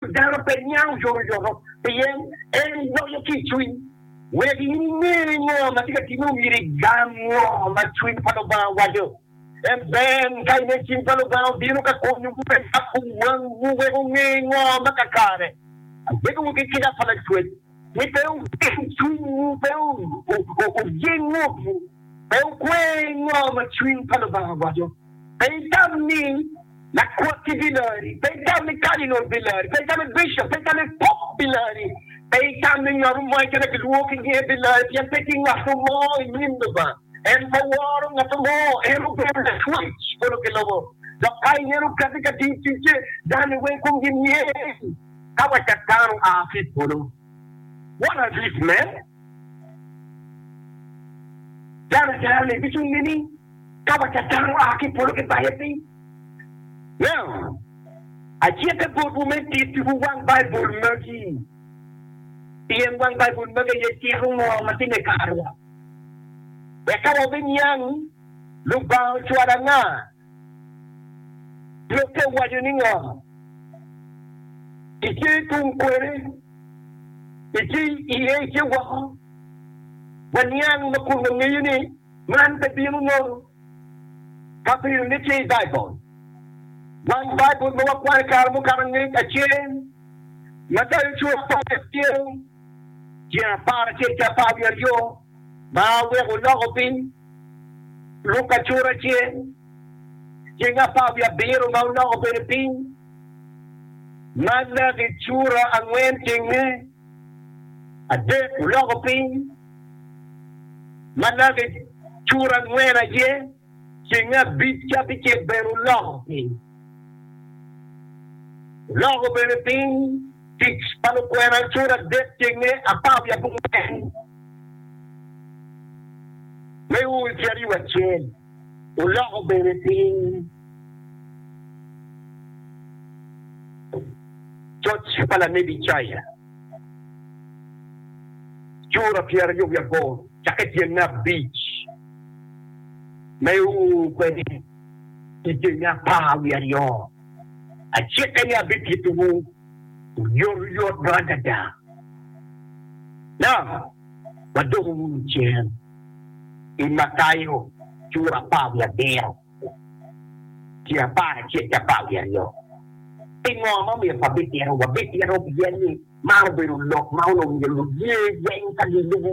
Dano pe niango yoroyoro pien en loyo ki i cwiny. Wek in inge ni ngo ma tye ka timme omyero igam ngo ma cwiny pa Lubanga waco. En ber ka inen cing pa Lubanga obino ka konyowu me yabo wangwu wek wunge ngo ma kakare. Abedowu ki kica pa lacwec. ni pe wugeng cwinywu, pe wujing ngutwu, pe wukwer i ngo ma cwiny pa Lubanga waco, pe itam ni lakwoti bilari, pe itam ni kadinol bilari, pe itam ni bicop, pe itam ni pop bilari, pe itam ni ngat mo keken ma kilwongo ki nyinge bilari, pien pe tye ngat mo i nyim Lubanga en ma woro ngat mo. En obedo Lacwec polo ki lobo, dok ka ineno kati ka tiyo ticce, dano-ni weng komgi myel. ka wa tek dano a ki i polo. What are these men? Dano jero ni ducu nining ka wa tek dano a ki i polo gibaye piny? Now, acike botwu me tittiwu wang Baibul magi, pien wang Baibul magi aye cito ngo ma tye me karowa. Wek ka wabiniang Lubanga ocwalo anga Lok pe waco ni ngo i tye tung kwene i tye iye i tye woko. Waniang ma kun wangeyo ni man pe bino nono ka bedo ni tye i Baibul. Wang Baibul ma wakwano kare mukato angec acel ma tayo cura apar ki apyel tyen apar acel ki apar wiye aryo. ma weko loko piny lub acura ce ceng apar wiye abiro ma oloko bene piny ma naki cura angwen ceng me adek oloko piny ma naki cura angwen aye. Cinge abic ca ki cen bene oloko piny. Oloko bene piny tic pa lukwena acer adek ceng me apar wiye abongwen me ur ki aryo acel. Oloko bene piny coc pa lanebi Icaya cura pyeraryo wiye aboro cake tyen me abic. Meyo kwede i jami apar wiye aryo, acikke ni abitittiwu oyotoyot bot adada, ento wadoko wunu cen i Matayo cura apar wiye abiro ki apar acel ki apar wiye aryo. Pingo ma omyero wabitito? Wabitito pien ni man obedo lok ma onongo myero luye lweny ka gilubo.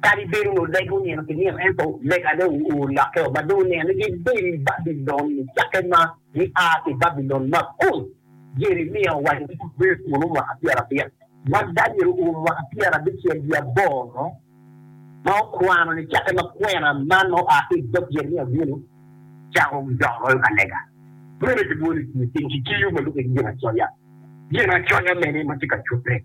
Kadi bed onongo legwu nino ki nino, ento lega dong olokke o, ma dong wuneno ni gibedo i Babilon-ni cakke ma gia ki i Babilon Makun. Jeremia owaco ni gibedo kunnu mwaka pyerabit, ma Daniel oum mwaka pyerabicel wiye aboro, ma okwano ni cakke ma kwena man ma oa ki i dog Jeremia bino, cako dok royo ka lega. Meno kilwongo ni tiyo piny ki kiyo ma lubbe ki ginacoya. Ginacoya mene ma tye ka cute?